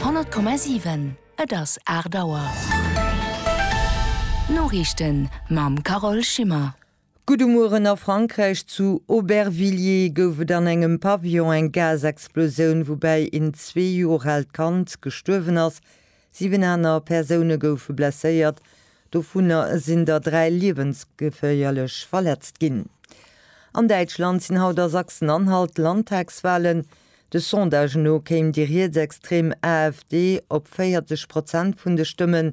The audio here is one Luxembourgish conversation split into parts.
100,7 Et ass 8 Auer. D'Noriichten mam Carole Schimmer. Gutt um Mueren a Frankräich. Zu Aubervilliers gouf et an engem Pavillon eng Gasexplosioun, woubäi een zwee Joer aalt Kand gestuerwen ass. Siwen aner Persoune goufe blesséiert, dovunner sinn der dräi liewensgeféierlech verletzt ginn. An Däitschland sinn haut a Sachsen-Anhalt Landtagswalen. De Sondage no kéim déi rietsextrem AfD op 40 Prozent vun de Stëmmen.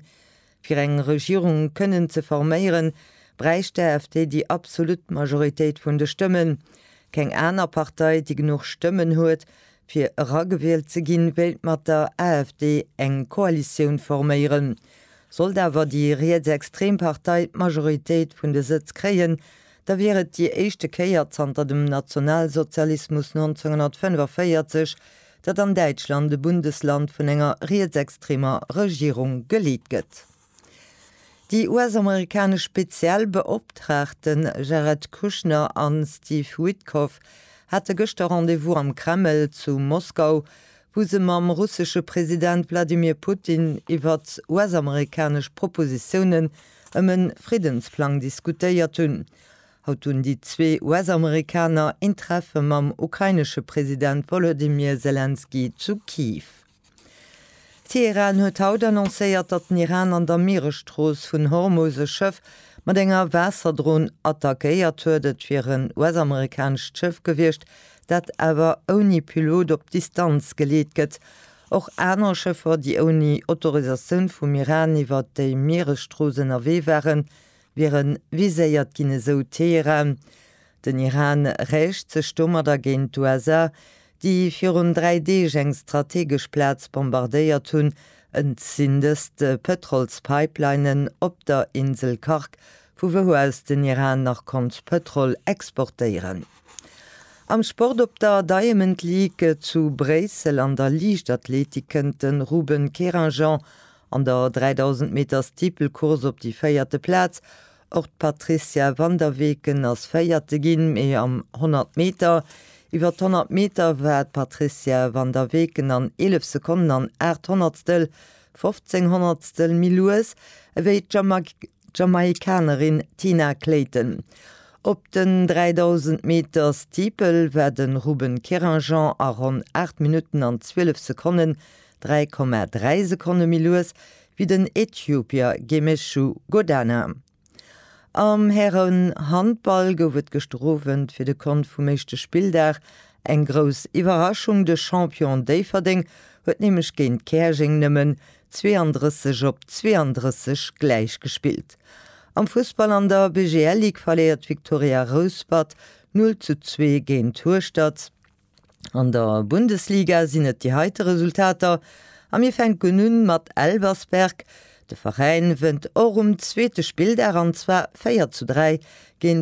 Fir eng Regierung kënnen ze forméieren, bräicht d'AfD déi absolut Majoritéit vun de Stëmmen. Keng aner Partei, déi genuch Stëmmen huet, fir eragewielt ze ginn, wéilt mat der AfD eng Koalitioun forméieren. Sollt awer déi rietsextrem Partei d'Majoritéit vun de Sëtz kréien, da wier et déi éischte Kéier zanter dem Nationalsozialismus 1945, datt an Däitschland e Bundesland vun enger rietsextremer Regierung geleet gëtt. Déi US-amerikanesch speziell Beoptraagte Jared Kushner a Steve Witkoff hate gëschter Rendez-vous am Kreml zu Moskau, wou se mam russesche President Wladimir Putin iwwert US-amerikanesch Propositiounen ëm e Friddensplang diskutéiert hunn. Haut hunn déi zwee US-Amerikaner een Treffe mam ukrainesche President Wolodymyr Selenskyj zu Kiew. Teheran huet haut annoncéiert, datt den Iran an der Mieresstrooss vun Hormus e Schëff mat enger Waasserdron attackéiert huet. Et wier en US-amerikanescht Schëff gewiescht, dat awer ouni Pilot op Distanz geleet gëtt. Och aner Schëffer, déi ouni Autorisatioun vum Iran iwwer déi Mieresstrooss ënnerwee waren, Wieren viséiert ginn, esou Teheran. Den Iran räicht sech domadder géint d'USA, déi virun dräi Deeg eng strategesch Plaz bombardéiert hunn, zindest d'Pëtrolspipelinen op der Insel Khark, vu wou aus den Iran nach konnt Pëtrol exportéieren. Am Sport, Op der Diamond League zu Bréissel an der Liichtathletik kënnt de Ruben Kerinjean An der 3000 Meter Steeplecourse op déi véierte Plaz. Och d'Patrizia van der Weken ass Véierte ginn, mee am 100 Meter. Iwwer d'Honnert Meter war d'Patrizia van der Weken an 11 Sekonnen an aacht Honnertstel, 15 Honnertstel, méi lues ewéi d'Jamaickanerin D'Jamaikanerin Tina Clayton. Op den 3.000 Meter Steeple war de Ruben Kéranjan a ronn 8 Minutten an 12 Sekonnen, 3,3 Sekonne méi lues wéi den Äthiopier Gemechu Godana. Am Hären-Handball gouf et gëschter Owend fir de Kont vum éischte Spilldag eng grouss Iwwerraschung. De Champion Déifferdeng huet nämlech géint Käerjeng nëmmen 32 op 32 gläich gespillt. Am Fussball an der BGL Ligue verléiert d'Viktoria Rouspert 0 zu 2 géint Hueschtert. An der Bundesliga sinn et déi heite Resultater a mir fänken u mat Elversberg. De Veräin wënnt och um zweete Spilldag an zwar 4 zu 3 géint